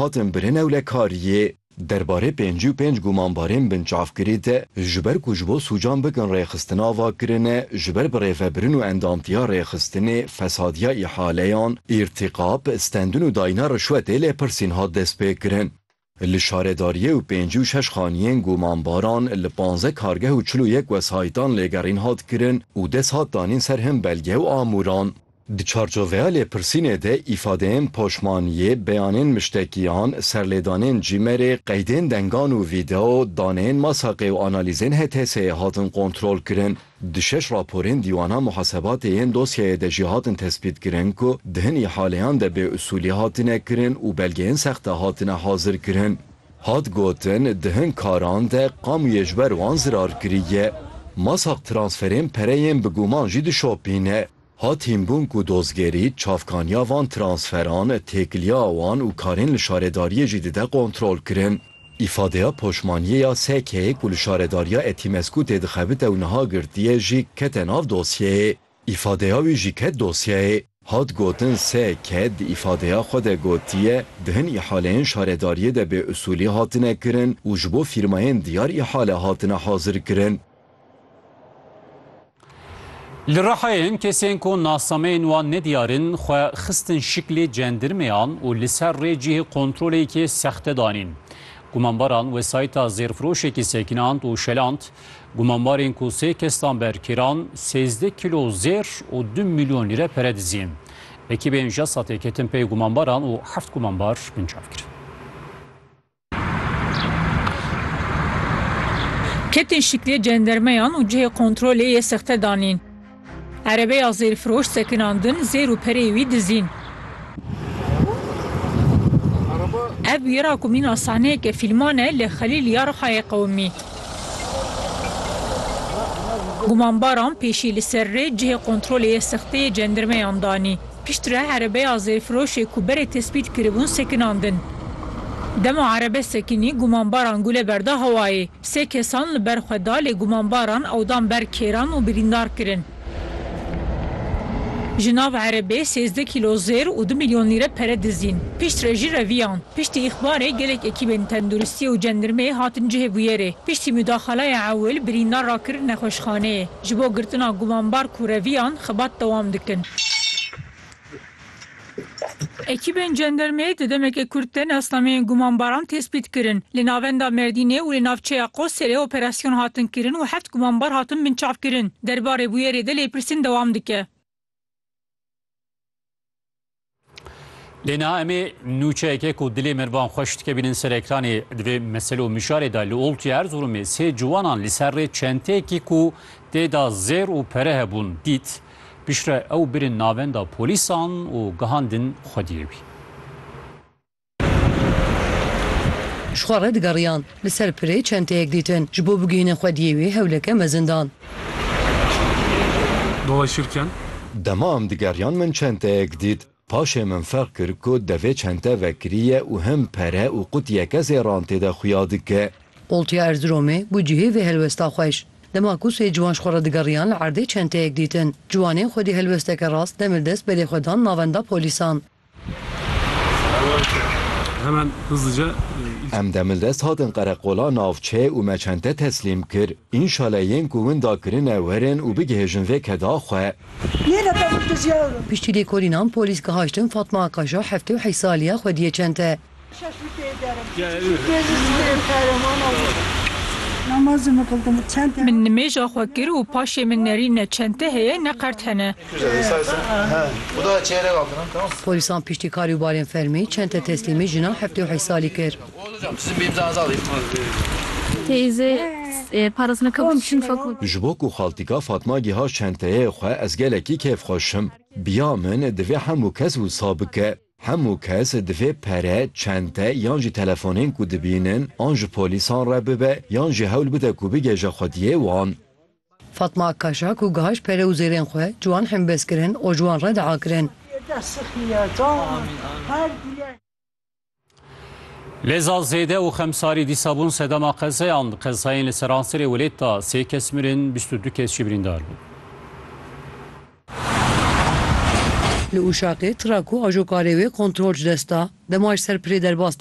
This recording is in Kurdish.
hatin birîn ewlekariyê. Derbarê pêncî û pênc gumanbarên binçavkirî de ji ber ku ji bo sûcan bikin rêxistin ava kirine, ji ber birêvebirin û endamtiya rêxistinê, fesadiya îhaleyan, îrtîkab, stendin û dayîna rişwetê lêpirsîn hat destpêkirin. Li şaredariyê û pêncî û şeş xaniyên gumanbaran li panzdeh kargeh û çil û yek wesayîtan lêgerîn hat kirin û dest hat danîn ser hin belge û amûran. Di çarçoveya lêpirsînê de îfadeyên poşmaniyê, beyanên miştekiyan, serlêdanên cîmerê, qeydên dengan û vîdeo, daneyên masaqê û analîzên HTS'ê hatin kontrolkirin. Di şeş raporên dîwana muhasebatê yên dosyeyê de jî hatin tespîtkirin ku di hin îhaleyan de bêusûlî hatine kirin û belgeyên sexte hatine hazirkirin. Hat gotin, di hin karan de qamûyê ji ber wan zirar kiriye. Masaq transferên pereyên bi guman jî dişopîne. Hat hînbûn ku dozgerî, çavkaniya van transferan, têkiliya wan û karên li şaredariyê jî dide kontrolkirin. Îfadeya poşmaniyê ya SK'ê ku li şaredariya Etimesgû tê dixebite û niha girtiye jî kete nav dosyeyê. Îfadeya wî jî ket dosyeyê. Hat gotin SK di îfadeya xwe de gotiye, di hin îhaleyên şaredariyê de bêusûlî hatine kirin û ji bo fîrmayên diyar îhale hatine hazirkirin. Li Rihayê kesên ku nasnameyên wan ne diyar in xwe xistin şiklê cendirmeyan û li ser rê cihê kontroleyekê sexte danîn. Gumanbaran wesayîta zêrfiroşekî sekinand û şeland. Gumanbarên ku sê kestan berkiran sêzdeh kîlo zêr û du milyon lîre pere dizîn. Ekîbên JASAT'ê ketin pey gumanbaran û heft gumanbar binçav kirin. Ketên şiklê cendermeyan û cihê kontrolê yê sexte danîn. Erebeya zêrfiroş sekinandin, zêr û pereyê wî dizîn. Ev wîra ku mîna sahneyeke fîlman e li Xelîl ya Rihayê qewimî. Gumanbaran pêşî li ser rê cihê kontrolê yê sexte yê cendermeyan danî. Piştre erebeya zêrfiroşê ku berê tespît kiribûn sekinandin. Dema erebe sekinî gumanbaran gule berda hewayê. Sê kesan li ber xwe da lê gumanbaran ew dan ber kêran û birîndar kirin. Ji nav erebê sêzdeh kîlo zêr û du milyon lîre pere dizîn. Piştre jî reviyan. Piştî îxbarê gelek ekîbên tenduristiyê û cendirmeyê hatin cihê bûyerê. Piştî mudaxalaya ewil birîndar rakirin nexweşxaneyê. Ji bo girtina gumanbar kureviyan xebat dewam dikin. Ekîbên cendermeyê di demeke kurt de nasnameyên gumanbaran tespît kirin. Li navenda Merdînê û li navçeya Qoserê operasyon hatin kirin û heft gumanbar hatin binçavkirin. Derbarê bûyerê de lêpirsîn dewam dike. Lê niha em ê nûçeyeke ku dilê mervan xweş dike bînin ser ekranê di vê mesele û mişarê de li Oltûyê Erzurumê sê ciwanan li ser rê çenteyekî ku tê de zêr û pere hebûn dît. Piştre ew birin navenda polîsan û gihandin xwediyê wî. Ji xwe re digeriyan. Li ser pirê çenteyek dîtin. Ji bo bigihînin xwediyê wê hewleke mezin dan. Dolaşır ken. Dema em digeriyan min çenteyek dît. Paşê min ferq kir ku devê çente vekirî ye û him pere û qutiyeke zêran tê de xuya dike. Oltiya Erziromê bû cihê vê helwesta xweş. Dema ku sê ciwan ji xwe re digeriyan li erdê çenteyek dîtin. Ciwanên xwedî helwesteke rast demir dest berê xwe dan navenda polîsan. Em demildest hatin qereqola navçe û me çente teslîm kir. Înşale yên ku winda kirine werin û bigihêjin vê keda xwe. Piştî lêkolînan polîs gihaştin Fatma Akaşa heftê û heşt salî ye xwediyê çente. Min nimêja xwe kir û paşê min nerî ne çente heye ne qert hene. Polîsan piştî karî û barên fermî çente teslîmî jina heftê û heşt salî kir. Ji bo ku xaltika Fatma giha çenteyê xwe ez gelekî kêfxweş im. Biya min divê hemû kes wisa bike. Hemû kes divê pere, çente yan jî telefonên ku dibînin an ji polîsan re bibe yan jî hewl bide ku bigêje xwediyê wan. Fatma Akkaşa ku gihaj pere û zêrên xwe ji wan hembes kirin û ji wan re dua kirin. Leza zêde û xemsarî dîsa bûn sedema qezeyan. Di qezayên li seranserê welêt de sê kes mirin, bîst û du kes jî birîndar bûn. Li Uşakê tira ku ajokarê wê kontrol ji dest da, dema ji ser pirê derbas dibû,